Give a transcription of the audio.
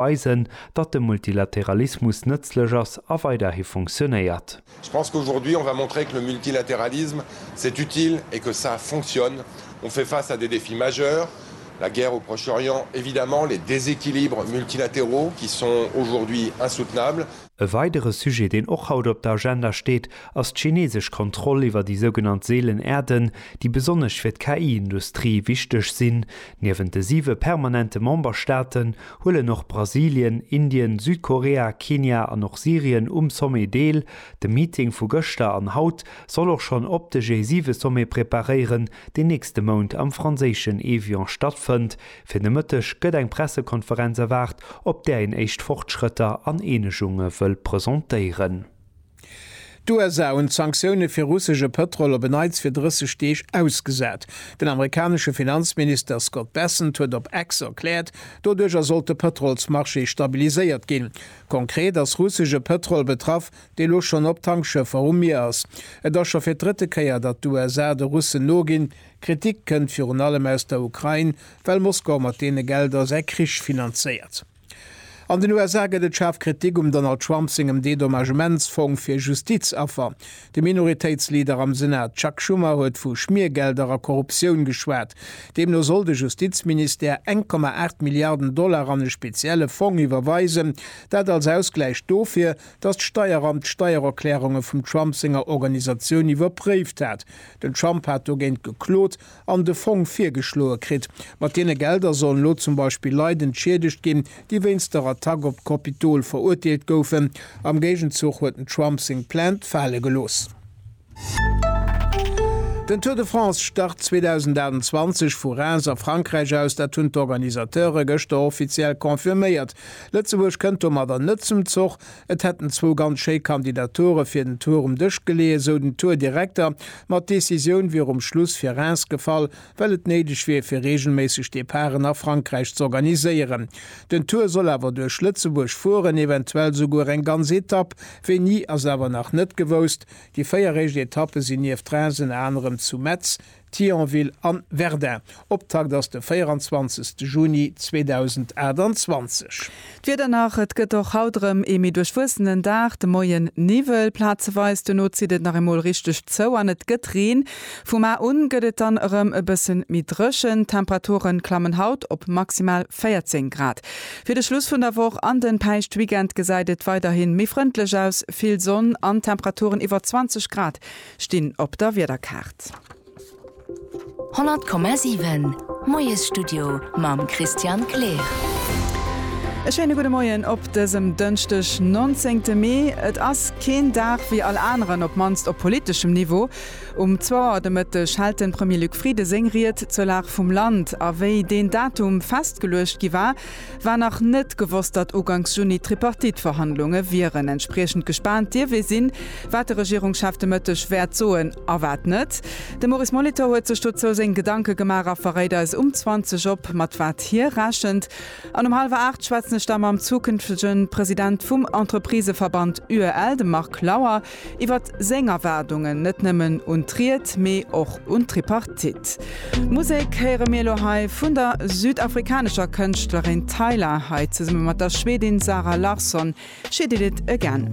weisen, datt de Multilateralismus nëtzlech ass a weiderhi funktionéiert. Je pense qu'aujourd'hui on va montrer que le multilatéralisme c'est utile et que ça fonctionne. On fait face à des défis majeurs, la guerre au Proche-Orient, évidemment, les déséquilibres multilatéraux qui sont aujourd'hui insoutenables. E weidere Sujet, deen och haut op der Agenda steet, ass d'chinesesch Kontroll iwwer déi sougenannt seelen Erden, déi besonnesch fir d'KI-Industrie wichteg sinn. Niewent de siwe permanente Memberstaaten, huelen och Brasilien, Indien, Südkorea, Kenia an och Syrien um Sommet deel. De Meeting vu gëschter an haut soll och schonn op de G7-Sommet preparéieren, deen nächste Mount am franséischen Évian stattfënnt. Fir de Mëtteg gëtt eng Pressekonferenz erwaart, op där een éischt Fortschrëtter an Eenegunge wëll presentéieren. D'USA hunn d'Sanktioune fir russesche Pëtrol op en Neits fir 30 Deeg ausgesat. Den amerikanesche Finanzminister Scott Bessent huet op X erkläert, doduercher sollt de Pëtrolsmarché stabiliséiert ginn. Konkret ass russesche Pëtrol betraff, dee lo schonn op Tankschëffer um Mier ass. Et ass scho fir d'drëtte Kéier, datt d'USA de Russen noginn. Kritik kënnt virun allem aus der Ukrain, well Moskau mat deene Gelder säi Krich finanzéiert. An den USA gëtt et schaarf Kritik um Donald Trump sengem Dedommagementsfong fir Justizaffer. De Minoritéitsleader am Senat Chuck Schumer huet vu Schmiergelder a Korruptioun geschwat. Deemno soll de Justizministère eng Komma aacht Milliarden Dollar an e spezielle Fong iwwerweisen, dat als Ausgläich dofir, datt d'Steieramt d'Steiererklärunge vum Trump senger Organisatioun iwwerpréift hat. Den Trump hat dogéint geklot an de Fong virgeschloe kritt. Mat deene Gelder sollen elo zum Beispill Leit entschiedegt ginn, déi wéinst der Attack op d'Kopitol verurteelt goufen. Am Géigenzuch huet den Trump seng Plainte fale gelooss. Den Tour de France start 2028 vu Reims a Frankräich aus. Dat hunn d'Organisateure gëschter offiziell confirméiert. Lëtzebuerg kënnt domadder net zum Zoch. Et hätten zwou ganz schéi Kandidature fir den Tour um Dësch geleeë, esou den Tour-Direkter. Ma d'Decisioun wier um Schluss fir Reims gefall, well et néideg wier, fir reegelméisseg Departen a Frankräich z'organiséieren. Den Tour soll awer duerch Lëtzebuerg fueren, eventuell souguer eng ganz Etapp. Wéini, ass awer nach net gewousst. Déi véier éischt Etappe sinn nieft Reims ënner anerem zu Metz, Thionville a Verdun. Optakt ass de 24 Juni 2028. D'Wieder nach, Et gëtt och haut erëm ee méi duerchwuessenen Dag, de Moien Niwwel plazeweis, duerno zitt et nach eemol richteg zou an et gëtt Reen. Vum A un gëtt et dann erëm e bëssen méi dréchen, d'Temperature klammen haut op maximal 14 Grad. Fir de Schluss vun der Woch an den Päischtweekend gesäit et weiderhin méi frëndlech aus, vill Sonn an Temperaturen iwwer 20 Grad. Stinn op der Wiederkaart. 100,7 Moiesstudio mam Christian Kleer. E schéine gudde Moien op dësem Dënschdeg, 19 te Mee. Et ass keen Dag wéi all aneren, op mannst op politeschem Niveau. Um zwou Auer de Mëtteg hält de Premier Luc Frieden seng Ried zur Lag vum Land. A wéi deen Datum festgeluecht gi war, War nach net gewosst, datt uganks Juni d'Tripartite-Verhandlunge wieren. Entspriechend gespaant dierf ee sinn, wat de Regierungschef de Mëtteg wäert soen a wat net. De Maurice Molitor huet sech dozou seng Gedanke gemaach a verréit eis um 20 op, mat wat hie rechent. An um hallwer 8 schwätzen ech da mam zukünftegen President vum Entrepriseverband UEL, dem Marc Lauer. Iwwert seng Erwaardungen, net nëmmen un d'Ried, mee och un d'Tripartite. Musek héiere mir elo hei vun der südafrikanescher Kënschtlerin Tyla, hei zesumme mat der Schwedin Zara Larsson, She Did It Again.